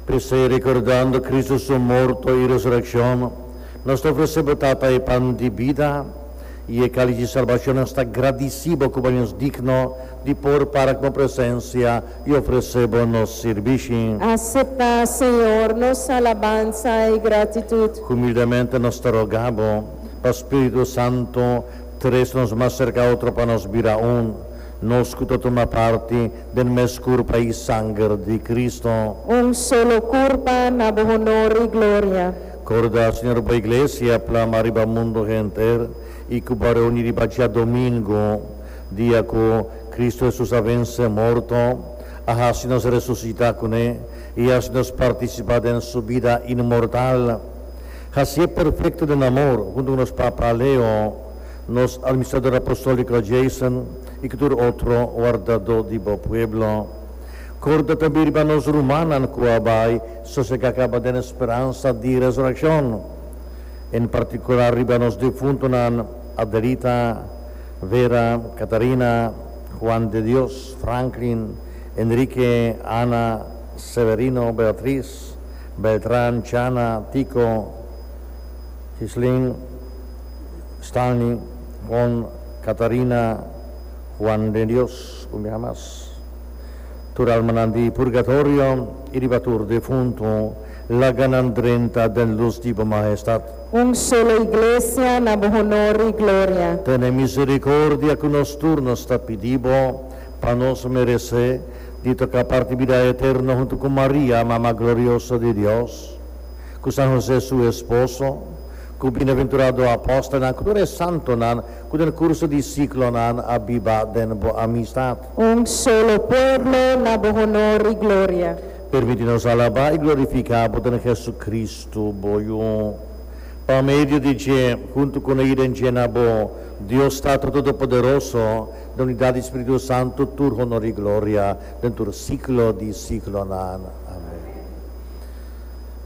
P'esei, rekordando Kristu su morto i resurekshon, nos ta ofresé bo Tata e pan di bida i e kális di salbashon. Nos ta gradisí bo ku bo haña nos digno di por para ku bo presensia i ofresé bo nos sirbishi. Aseptá, Señor, nos alabansa i gratitut. Humildemente nos ta rogá bo pa spiritu santu tres nos mas serka otro pa nos bira un. Nos cu ta tuma parti den mes curpa y sanger di Cristo. Un solo curpa na bo honor y gloria. Corda, Señor, bo Iglesia plama riba mundo henter y cu bo reuni riba djadomingo, dia cu Cristo Jesus a vence morto, a haci nos resucita cu ne y a haci nos participa den su bida inmortal. Haci'e perfecto den amor, hunto cu nos papa Leo. nos Administrador Apostolico Jason y cu tur otro wardado di bo pueblo. Corda tambi riba nos rumannan cu a bay sosega caba den e speransa di resurreccion, en particular riba nos difuntonan Adelita, Vera, Catarina, Juan de Dios, Franklin, Enrique, Ana, Severino, Beatriz, Beltran, Chana, Tico, Chislin. Stanley, Ron, Katarina, Juan de Dios ku mihá mas. Tur almanan di purgatorio i di pa tur defuntu laganan drenta den lus di bo Mahestat. Un solo iglesia na bo honor i gloria. Tene misericordia ku nos tur. Nos ta pidi bo pa nos meresé di toká parti bida eterno huntu ku Maria, Mama Glorioso di Dios, ku San José su esposo, Ku bienaventurado apòstelnan ku tur e santonan ku den kurso di siklonan a biba den bo amistat. Un solo pueblo na bo honor i gloria. Permití nos alabá i glorifiká bo den Hesukristu, bo Yu. Pa medio di dje, huntu ku na i den dje na bo, Dios Tata Todopoderoso, den unidat di Spiritu Santu, tur honor i gloria den tur siklo di siklonan. Amèn.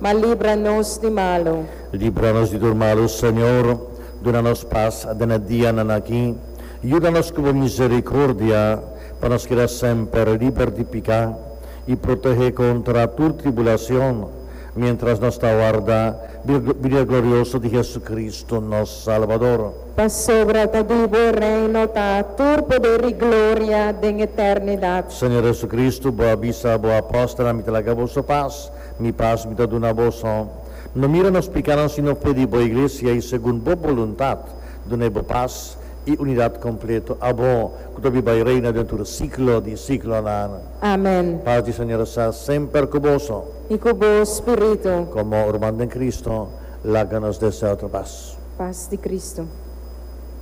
Ma libra nos di malu. Libra nos di tur malu, Señor. Duna nos pas den e dianan aki. Yuda nos ku bo misericordia, pa nos keda semper liber di piká, i protehe kontra tur tribulacion, mientras nos ta warda binia glorioso di Jesucristo, nos Salvador. Pasobra ta di bo e reino, ta tur poder i gloria den eternidad. Señor Jesucristo, bo a bisa bo apòstelnan, Mi ta laga boso pas. Mi pas mi ta duna boso. No mira nos pikánan sino fe di bo Iglesia i segun bo boluntat dun'é bo pas i unidat kompleto, abo ku ta bi bai reina den tur siklo di siklonan. Amen. Pas di Señor sa semper ku boso. I ku bo spiritu. Komo urman den Kristu, laga nos desea otro pas. Pas di Kristu.